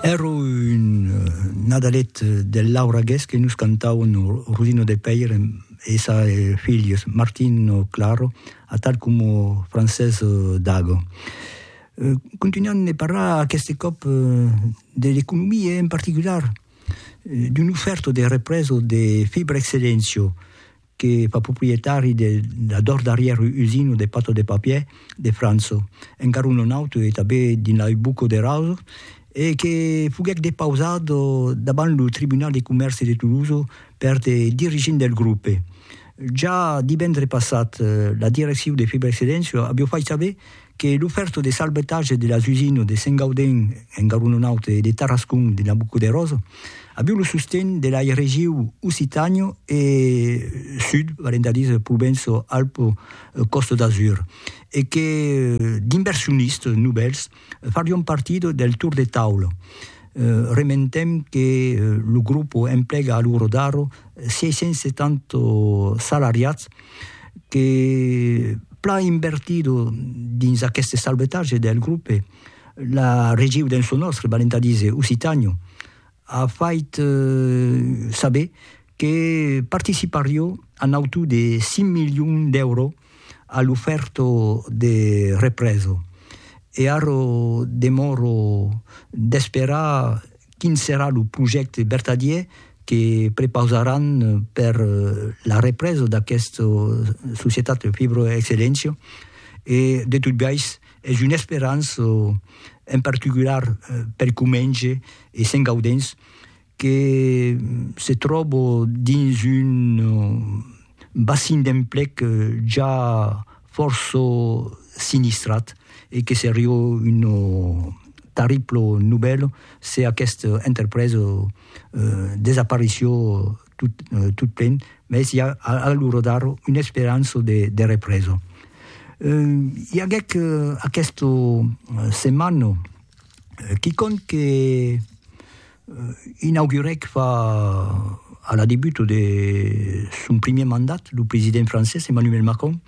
Ero un nadalet del Laura Guest que nos cantauen Rosino de Pèire e sa filhos Martino Claro atal como Francés Dago. Continuant de parlar aqueste còp de l'economia e en particular d'un ofèrto de represa de Fibra Excellencio, que fa proprietari de la dors darrièr usina de pata de papier de França, encara un non auto e tanben dins la Ubucco de Raso, e que foguèt depausat davant lo Tribunal de Comèrci de Tolosa per de dirigents del grupe. Ja divendre passat, la direccion de Fibrexcedensio aviá fait saber que lo fèrto de salvetatge de las usines de Saint-Gaudens en Garonenaut e de Tarascon de Nabucoderós aviu lo sosten de lai regiu Occitània e Sud, valent a díser Provenço-Alpes-Costa d'Azur, e que d'inversionistes novèls farion partida del tour de taula. Rementem que lo grupo emplega a lo Rodaro 670 salariats, que plan invertido dins aqueste salvetatge del grope, la regiu dens lo nòstre, valent a díser Occitània, a fait saber que participarió a nautu de 5 milions d'èuro a l'ofèrta de represa. E ara demòra d'esperar. Quin serà lo projècte vertadièr que prepausaràn per la represa d'aquesta societat Fibroexcellentia? E de tot biais, es una esperança, en particular per Comenge e Sent Gaudenç, que se tròba dins un bassin d'emplec ja fòrça sinistrat e que serió una tarribla novèla se aquesta enterpresa desaparició tot plen, mès i a a l'ora d'ara una esperança de represa. I aguèc aquesta setmana quicòm que Inaugurèc fa a la debut de son primièr mandat lo president francés Emmanuel Macron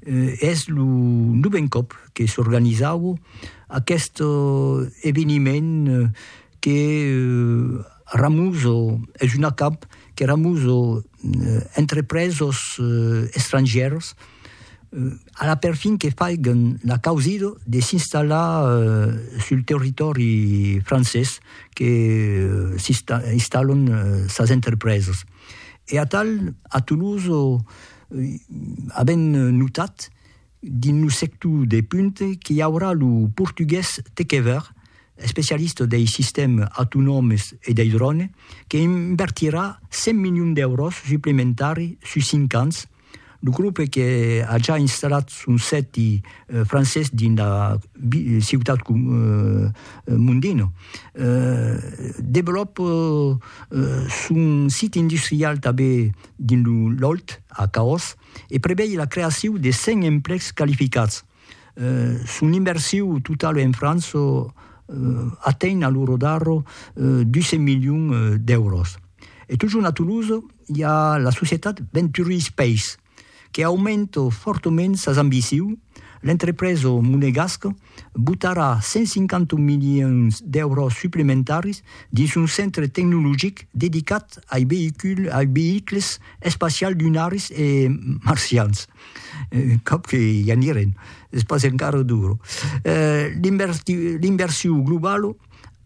e es lo novèn còp que s'organizav aqueste eveniment que ramuz es un acamp que ramuz entrepresos estrangièrs Ala perfin que faiguen la causida de s'installar sul territòri francés que s'installan sas entrepresas. E atal, a Toulouse avèm notat dins lo sector de punta qu'i aurà lo portugués Tekever, especialista dei sistèm autonòmes e dei drònes, que invertirà 100 milions d'èuros suplementaris sus cinc ans Lo grope que a ja installat son sèti francés dins la ciutat Mondino, develòpa son sit industrial tanben dins lo Lòlh, a Caòs, e prevei la creacion de 100 emplècs qualificats. Son inversiu totala en França atenh a lo rodarro 200 milions d'èuros. E totjorn a Toulouse, i a la societat Venturi Space, que aumenta fòrtament sas ambicions, l'entrepresa monegasca botarà 150 milions d'èuros suplementaris dins son centre tecnologic dedicat ai veïculs espacials lunaris e marcians, un còp que i anirem, es pas encara dura. L'inversion globala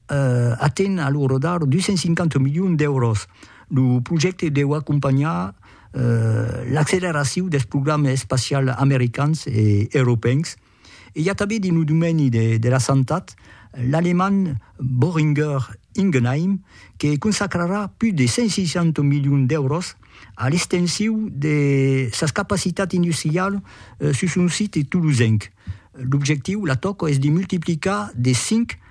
Aten a lo rodar 250 milions d'èuros. Lo projècte deu acompanhar l'acceleracion dels programas espacials americans e europèus. E i a tanben dins lo domeni de la santat l'alemand Boehringer Ingelheim que consacrarà pus de 160 milions d'èuros a l'extension de sas capacitats industrialas sus son site tolosenc. L'objectiu, la tòca, es de multiplicar de 5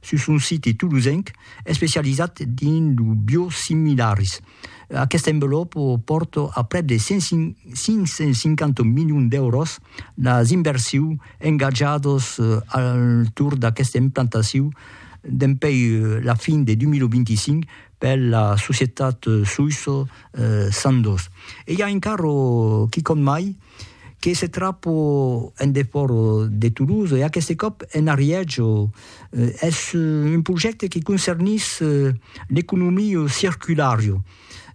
sus un site tolosenc especializat dins lo biosimilaris. Aquesta envelòpa pòrta a prèp de 550 milions d'èuros las inversius engatjadas al torn d'aquesta implantacion dempuèi la fin de 2025 per la societat soïssa Sandoz. E i a encara quicòm mai, que se trapo en defòra de Toulouse e aqueste còp en Ariège. Es un projècte que concernís l'economia circulara.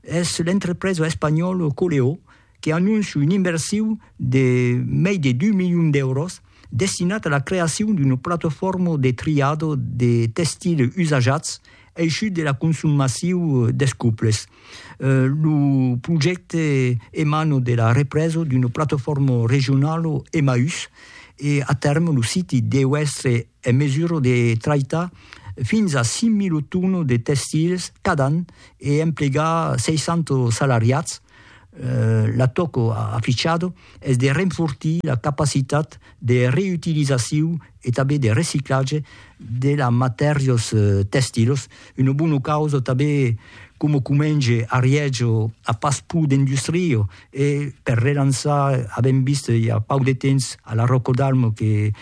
Es l'entrepresa espanhòla Coleó que anóncia un inversiu de mei de 2 milions d'èuros destinat a la creacion d'una platafòrma de triada de testils usajats Aishut de la consum massiu des cuples. Lo projècte emano de la represa d'una platafòrma regionala Emmaüs e a tèrme lo siti deu èstre en mesura de traitar fins a 5.000 tonas de testils cada an e emplegar 60 salariats, L'atòco afichado es de renfortir la capacitat de reütilizaciu e tanben de reciclatge de las matèrias tèxtilas, una bona causa tanben coma comenge a Riègia a pas pur d'industria e per relançar, avèm vist i a pauc de temps a la Rocodalm que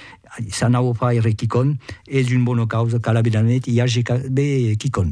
s'anava a fair quicòm, es una bona causa, cal aver la net i i age tanben quicòm.